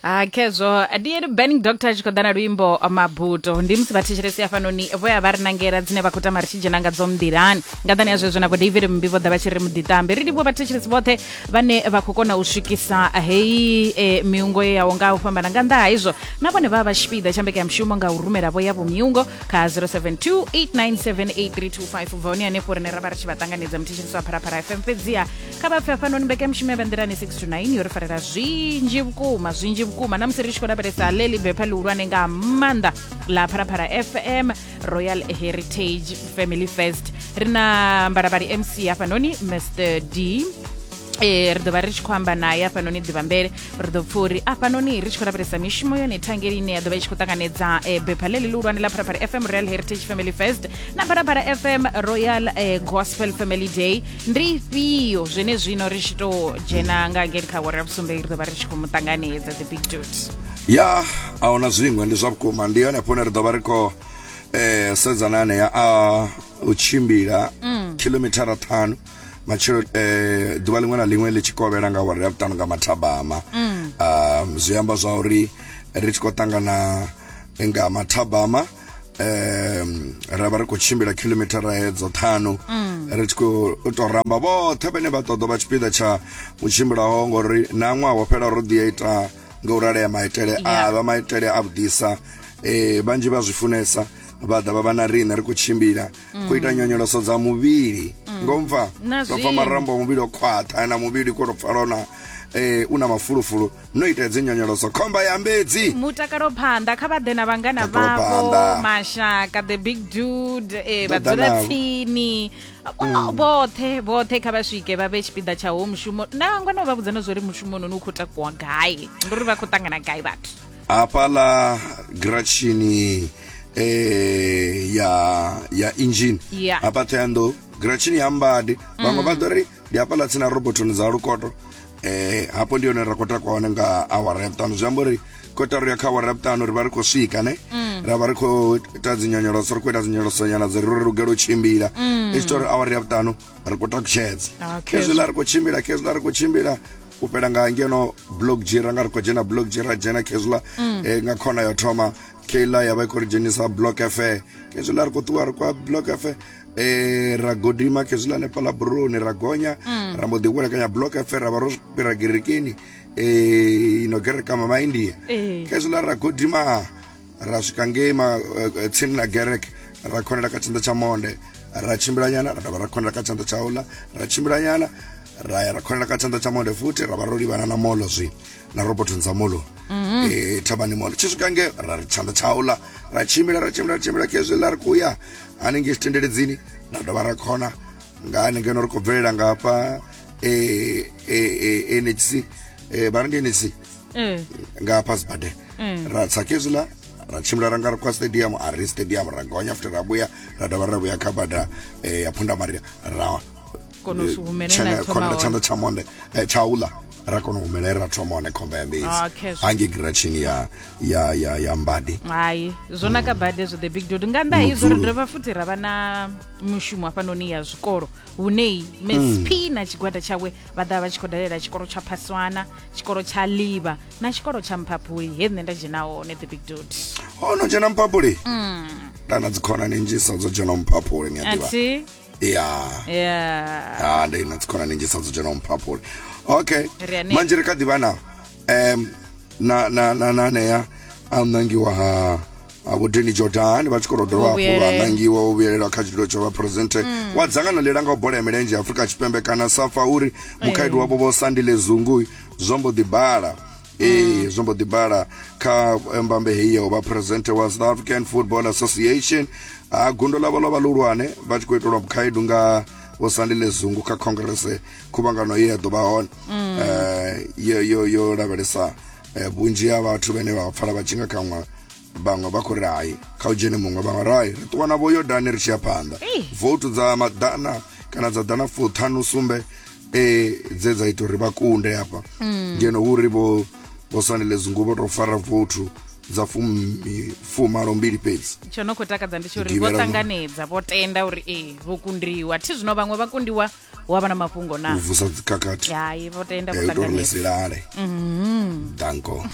ha khezwo ndi ene burning doctor a tshi khou ḓa na luimbo mabuto ndi musi vhathetshelesi hafhanoni vho ya vha ri nangela dzine vha khou tama ri tshi dzhena nga dzo nḓilani nga ḓani ya zwezwo na vho david mmbi vho ḓa vha tshi ri muḓiṱambe ri livhuwa vhathetshelesi vhoṱhe vhane vha khou kona u swikisa heyi e, miungo ye yaho nga u fhambana nga nnḓa ha izwo na vhone vha vha tshipiḓa tsha mbekanyamushumo nga u rumela vho yavho miungo kha 072 897 8325 ubva hone hanefho rine ra vha ri tshi vha ṱanganedza muthetshelesi wa pharapara fm fhedziha kha vha pfe hafhanoni mbekanyamushumo ya vha nḓilani 6 to 9 yo ri farela zwinzhi vhukuma zwinzhi vhukuma na musi ri tshi khou lavhelesa ḽe libepha ḽihulwane nga maanḓa ḽa phalaphala fm royal heritage family fest ri na mbalabali mc hafhanoni mr d e ri ḓo vha ri tshi khou amba naye afhanoni ḓivhambele ri ḓo pfa uri afhanoni ri tshi khou lavhelesa mishumo yone thangeli ine ya ḓo vha i tshi khou ṱanganedza e, bepha ḽe ḽihulwane ḽa phalaphala fm royal heritage family fest na phalaphala fm royal e, gospel family day ndi ifhio zwene zwino ri tshi tou dzhena nga ngeni kha wara ya vhusumbe ri ḓo vha ri tshi khou mu ṱanganedza the big dude ya a huna zwiṅwe ndi zwa vhukuma ndi hone hafhone ri ḓo vha ri khou eh, sedzana anea a u tshimbila khilomithara ṱhanu matshelo eh, ḓuvha liṅwe na liṅwe ḽi tshi kovhela nga wara ya vhuṱanu nga mathabama um, zwi amba zwa uri ri tshi khou ṱangana nga mathabama um ra vha ri khou tshimbila khilomithara hedzo ṱhanu mm. ri tshi khou to ramba vhoṱhe vhane vha ṱoḓa vha tshipiḓa tsha u tshimbilaho ngori na ṅwaha wo fhela ro ḓi ya ita nga u ralea maitele a vha maitele a vhuḓisa um vhanzhi vha zwi funesa vha ḓa vha vha na riṋe ri khou tshimbila ku ita nyonyoloso dza muvhili mm. ngo mpfa ndo pfa marambo a muvhili o khwaṱha na muvhili ko to pfala na eh una mafulufulu no ita dzi nyonyoloso khomba ya mbedzi mutakalo phanḓa kha vha ḓe na vhangana vhavho mashaka the big dude eh vha dzula tsini mm. vhoṱhe vhoṱhe kha vha swike vha vhe tshipiḓa tsha ho mushumo na ngwana vha vhudza na zwo ri mushumo noni u khou takuwa gai ndi uri vha khou ṱangana gai vhathu apala grachini eh, ya ya engine Yeah. apa theando grachini ya mbadi vamwe va ḓo ri ndi apala tsina robotoni dza lukoto eh, hapo ndi yone ra khou takuwa hone nga awara ya vhuṱanu zwi amba uri kotaro ya kha awara ya vhuṱanu ri vha ri khou swika ne ra vha ri khou ita dzinyonyoloso ri khou ita dzinyonyolosonyana dzi ri ri lugela u tshimbila i tshi tori awara ya vhuṱanu ri khou takutshedza ah, khezwiḽa ri khou tshimbila khezwiḽa ri khou tshimbila u fhela nga ngeno blog g ra nga ri khou dzhena blog g ra dzhena khezwiḽa mm. eh, nga khona yo thoma keiḽa ya vha i khou ri dzhenisa block fe khezwiḽa ri khou ṱuwa ri kwa block fe eh ra godima khezwiḽa nefhaḽa buroni ra gonya mm. ra mbo ḓi vhulekanya block fe ra vha ro fhira gerekeni eh ino gereka mama india eh. khezwiḽa ra godima ra swika ngei ma, uh, tsini na gerek ra khonela kha tshanḓa tsha monde ra tshimbilanyana ra dovha ra khonela kha tshanḓa tsha ola ra tshimbilanyana ra ya ra khonela kha tshanḓa tsha monde futhi ra vha ro livhana na molo zwi na robotoni dza molo mhm. eh, thabani molo tshi swika nge ra ri tshanḓa tsha ola ra tshimbila ra tshimbila ra tshimbila khezwi ḽa ri khou ya hanengei tshitendeledzini ra dovha ra khona nga hanengeno ri khou bvelela nga hafha eh, eh, nhc vha ri ndi nhc mm. nga hafha sibadela mm. ra tsa kezila ra tshimbila ra nga ri kwa stadium a ri stadium ra gonya after ra vhuya ra dovha ra vhuya kha bada eh, ya phunda maria ra tshanḓa tsha monde eh, tsha ula ra kona u humela ra thoma hone khomba ya mbezi ah, hange giratshini ya ya ya ya mbadi hai zwo naka bade zwo the big dude nga nnḓa izwo ri dovha futhi ra vha na mushumo hafhanoni ya zwikolo hune msp hmm. na tshigwada tshawe vha ḓa vha tshi khou dalela tshikolo tsha phaswana tshikolo tsha ḽivha na tshikolo tsha mphaphuli he nṋe nda dzhena hone the big dot ho no dzhena mphaphuli ndana dzikhonani nnzhisa dzo dzhena mphaphuli ni a ḓivha athi ya ya ah ndi na dzikhonani nnzhisa dzo dzhena mphaphuli okay Ri hanefho. manje ri kha ḓivha na em na na na na anea a nangiwa ha vhudini jordan vha tshi khou dovha hafhu vha nangiwa u vhuyelelwa kha tshitulo tsha vhaphuresidenthe mm. wa dzangano ḽi langaho bola ya milenzhe ya afurika tshipembe kana safa uri mukhaedu wavho vho sandile zungu zwo mbo ḓi bala ee mm. zwo mbo ḓi bala kha eh, mbambe heyi ya u vha phuresidenthe wa south african football association a gundo ḽavho ḽo vha ḽihulwane vha tshi khou itelwa mukhaedu nga vho sandile zungu kha khongrese khuvhangano ye ya ḓo vha hone mm. eh, yo lavhelesa Eh, vhunzhi ha vhathu vhane vha pfala vha tshi nga kanwa vhaṅwe vha khou ri hai kha u dzhene muṅwe vhaṅwe rai ri ṱuwa na vhoyodani ri tshi ya phanḓa votu dza maḓana kana dza ḓana fuṱhanu sumbe eh, dze dza ita uri vha kunde hafha mm. ngeno hu ri vho vho sanele zungu vho tou fara votu dza fumalo mbili fhedzi tsho no khou takadza ndi tsho uri vho ṱanganedza vho tenda uri ee vho kundiwa thi zwino vhaṅwe vha kundiwa hu avha na mafhungo na u vusa dzikhakhathi hai vho tenda ya u ita uri ni vhuṱanganedzi si lale danko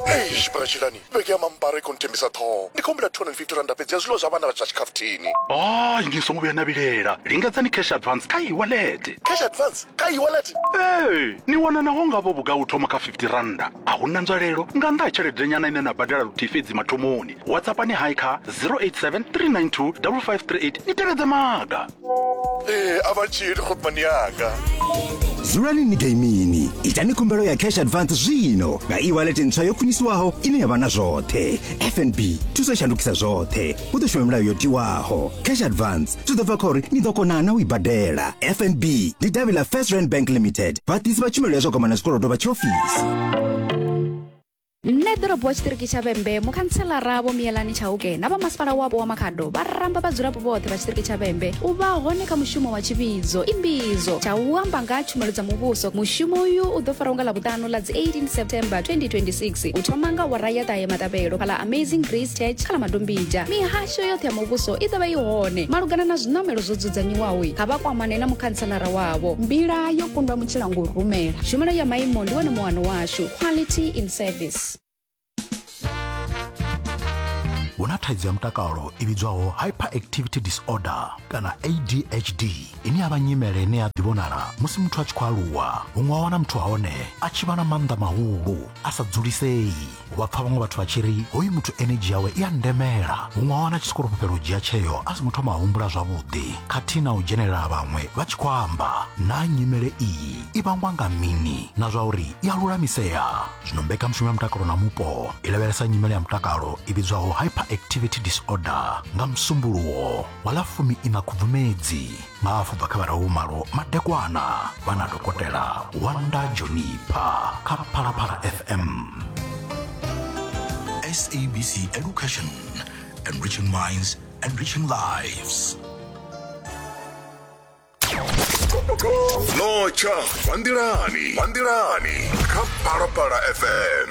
Eish, Bratshilani, vhege ya mambara i khou nthembisa ṱhoho. Ndi khou humbela 250 randa fhedzi ya zwiḽiwa zwa vhana vha zwa tshikhafuthini. hayi ni songo vhuya na vhilela lingedzani cash advance kha iwallet Cash advance kha e-wallet. ee ni wana naho ngavho vhugai u thoma kha 50 rannda a hu na nzwalelo nga nnḓa ha tshelede nyana ine na badela luthihi fhedzi mathomoni whatsappani hai kha 087 392 5538 ni tevhedze maga ee a vha tshili khopani yanga dzulani ni gaimini itani khumbelo ya cash advance zwino nga e-wallet ntswa yo khwinisiwaho ine ya vha na zwoṱhe fnb thuso i shandukisa zwoṱhe hu ḓo shuma milayo yo tiwaho cash advance zwi ḓo bva kha uri ni ḓo kona na u i badela fnb ndi davhi ḽa first rand bank limited vhaḓisi vha tshumelo ya zwa goma na zwikolodo vha tshiofisi nṋe ḓorobo wa tshiṱiriki tsha vhembe mukhantshelara vho miyelani tshauke na vha masipala wapo wa makhado vha ramba vhadzulapo vhoṱhe vha tshiṱiriki tsha vhembe u vha hone kha mushumo wa tshivhidzo imbidzo tsha u amba nga tshumelo dza muvhuso mushumo uyu u ḓo faraho nga ḽavhuṱanu ḽa dzi 18 september 2026 u thoma nga wara ya ṱahe matabelo kha ḽa amazing grace church kha ḽa madombija mihasho yoṱhe ya muvhuso i ḓo vha i hone malugana na zwiṋamelo zwo dzudzanyiwaho kha vha kwamane na mukhantshelara wavho mbila yo kundwa mutshilangurumela tshumelo ya maimo ndi wone muwano washu to quality in service. hu na thaidzo ya mutakalo i vhidzwaho hyperactivity disorder kana adhd ine ya vha nyimele ine ya ḓivhonala musi muthu a tshi khou aluwa huṅwe wa wana muthu wa hone a tshi vha na maanḓa mahulu a sa dzulisei u vha pfa vhaṅwe vhathu vha tshi ri hoyu muthu energy yawe i a ndemela huṅwe wa wana a tshi sokou fhufhela u dzhia tsheo a songo thoma a humbula zwavhuḓi khathihi na u dzhenelela vhaṅwe vha tshi khou amba na nyimele iyi i vhangwa nga mini na zwa uri i a lulamisea zwino mbekanyamushumo ya mutakalo na mupo i lavhelesa nyimele ya mutakalo i vhidzwaho hyperactivity disorder nga musumbuluwo wa ḽa fumi ina khubvumedzi nga hafu bva kha vharahumalo madekwana vha na dokotela wanda jonipa kha phalaphala fm SABC Education, enriching minds, enriching lives. notsha vha nḓilani vha nḓilani kha phalaphala fm